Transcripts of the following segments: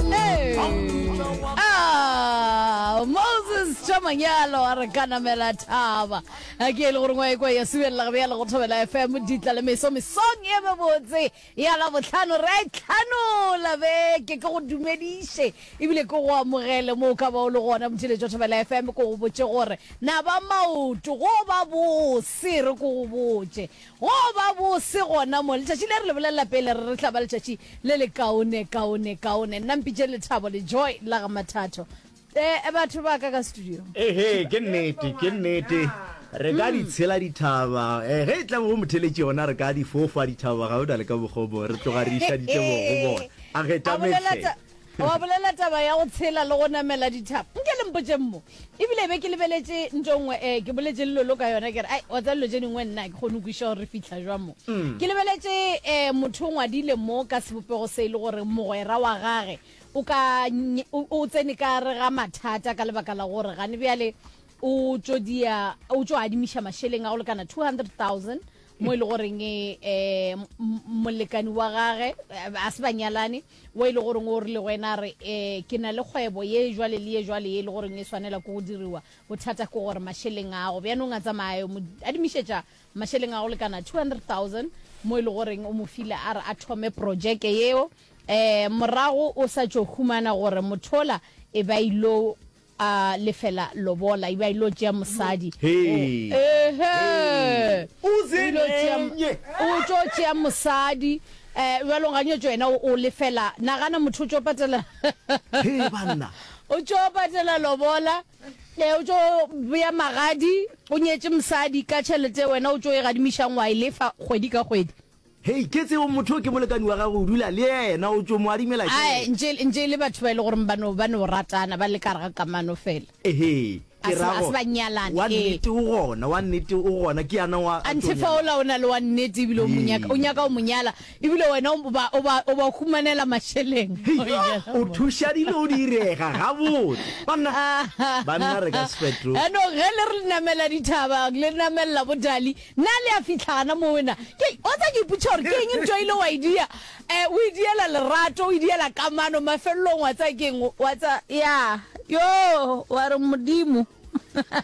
Hey. Ah, moses chamanyalo a re kanamela thaba a ke e le gore ngwa ekwa ya subelela gabe ya le go thobela fm ditla le meso mesong ye mebotse ya la botlhano re a e tlhanola beke ke go dumediše ebile ke go amogele mo o ka ba o le gona motšheletso wa thobela fm ko go botse gore na ba maoto go ba bose re ko go botse Go ba bose gona mo, letšatši le re le bolelela pele re re tla ba letšatši le le kaone, kaone, kaone. Nna mpitše lethabo, lejoy la ga Mathatho. Eh, batho ba ka ka studio. Ehe, ke nnete, ke nnete. Re ka di tshela dithaba. Eh, ge e tla bo motheletši yona re ka di fofa dithaba, ga o na le ka mokgwa o mongwe. Re tloga re išaditše bong go bona. A ge Tamenhle. A wa bolela taba ya go tshela le go namela dithaba? Nke le mpotšeng mo. Ebile be ke lebeletše nto nngwe, eh, ke boletše le lolo ka yona, ke re, ai, wa tseba dilo tše dingwe nna, ke kgone go kwiša gore re fihla jwa mo. Mm. Ke lebeletše, eh, motho o ngwadile mo ka sebopego se e le gore mogwera wa gage o ka, o, o tsene ka re ga mathata ka lebaka la gore gane bjale o tšo dia, o tšo adimiša mašeleng a go lekana 200,000 mo e le goreng, eh, molekani wa gage, eh, a se ba nyalane, Wo e le goreng o rile go yena, a re, Ee, ke na le kgwebo ye jwale le ye jwale ye e le goreng e swanela ke go diriwa. Bothata ke gore mašeleng a go. Bjanong a tsamaya a yo mo adimišetša mašeleng a go lekana 200,000, mo e le goreng o mo file a re a thome projeke yeo. Um, morago o sa tšo humana gore mothola e be a il'o. A lefela lobola, e be a ilo tšea mosadi. Hee. Ehe. O se nenye. O tšo tšea mosadi. Eh, bjalo nganyetšo yena o lefela. Nagana motho o tšo patela. Hee banna. O tšo patela lobola. Eh, o tšo bea magadi, o nyetše mosadi ka tšhelete wena o tšo e gadimišang wa e lefa kgwedi ka kgwedi. Hei, ke tseo motho yo ke molekani wa gagwe, o dula le yena, o tšo mo adimela Ae, tšhelete. ntše, ntše e le batho ba e le goreng ba no, ba no ratana, ba le ka gare ga kamano fela. Ehe, A ke se, ra a se gore, ba nyalane, wa ee. nnete o gona, wa nnete o gona, ke yana wa, a tšo Anthe nyala. faola o na le wa nnete ebile o mo nyaka, o Ee. nyaka go mo nyala, ebile wena o ba, o ba, o ba humanela mašeleng. Hei, O ile go o mo- thuša dilo di direga gabotse. Banna, banna re ka sefeto. Yaanong ge le re le namela dithaba, le namelela bo Dali, Na le a fihla gana moo na? Ke, wa tsa ke iputša gore ke eng ntwa ile wa e dia? Eh, o e diela lerato, o e diela kamano, mafelelong wa tsa ke eng, wa tsa, ya, yo, wa re Modimo.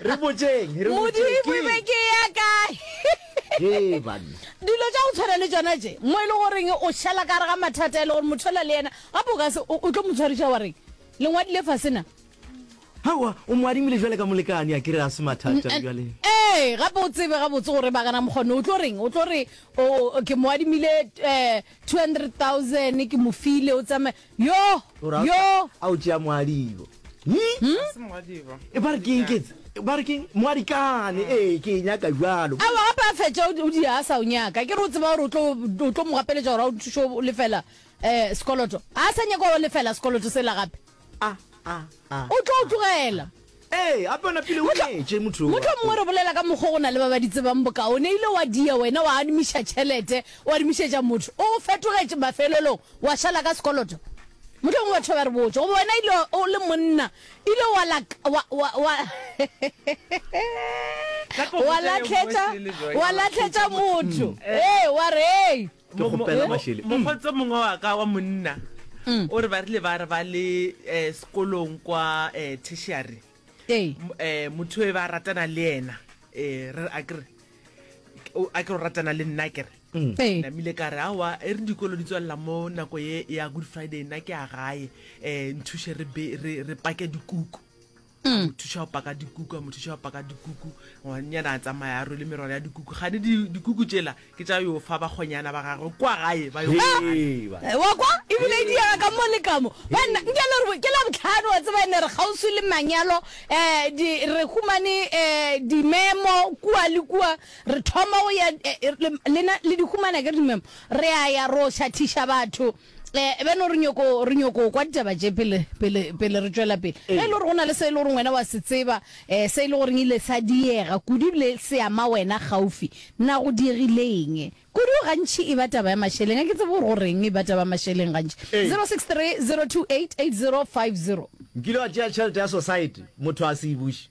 Re botšeng, re botšeng, ke. Modimo e be ke ya kae? Hee banna. Dilo tša go tshwana le tšona tše, mo e le goreng o šala ka re ga mathata e le gore motho ola le yena, gape o ka se, o, o tlo mo tshwariša wa reng? Lengwadile fase na? Aowa, o mo adimile bjale ka molekane, a ke re a se mathata bjale. Ee, gape o tsebe gabotse gore Bagana Mokgone o tlo reng, o tlo re, O, ke mo adimile two hundred thousand, ke mo file, o tsamaye. Yoh! O ra, Yoh! a o tšea moadibo. Hi? Ga se moadibo. E ba re ke eng, ke etse? Ba re ke eng? Moadikane, ee, ke e nyaka bjalo. Aowa, gape a fetša o di a sa o nyaka. Ke re o tseba gore o tlo, o tlo mo gapeletša gore a o thuše go lefela sekoloto. A sa nyaka go lefela sekoloto sela gape. a a a o tlo o tlogela ee ape ona pele o nyetše motho motho mongwe re bolela ka mokgwa go na le ba ba di tsebang bokaone ile wa dia wena wa adimiša tšhelete o adimišetša motho o fetogetše mafelelong wa šala ka sekoloto motho mongwe batho ba re botša goba wena ile o le monna ile wa latlhetša wa latlhetša motho ee wa re ee Ke kgopela Mashele. Mo- mo- mokgotse mongwe wa ka wa monna o re ba rile ba re ba le um sekolong kwa um tertiary Ee. M- eh motho e ba ratana le ena eh re a kere o- a ke o ratana le nna kere Ee. namile ka re awa e re dikolo di tswalela mo nako ye ya good friday nna ke a gae um nthuše re be- re re pake dikuku Hmm. motho xa o paka dikuku a motho xa o paka dikuku ngwanyana a tsamaya a rwele merwalo ya dikuku gane dikuku tšela ke tša yo fa bakgonyana ba gagwe kwa gae ba eh, wa kwa ebile e diega ka mo le kamo banna nke le gore ke la botlhano wa tseba ene re kgauswi le manyalo um re humane um eh, dimemo kua le kua re thoma go ya lena le di humana ke dimemo re a ya ro šathiša batho Eh, beno re nyoko re nyoko kwa ditaba tše pele pele pele re tšwela pele ge e le gore go na le se e le gore wena wa se tseba um se e le goreng ile sa diega kudu ebile se ama wena gaufi na go diegileng kudu gantšhi e ba taba ya mašeleng a ke tsebe gore goreng e ba taba ya mašeleng gantši 063 028 8050 nkile wa tšea tšhelete ya society motho a se e buše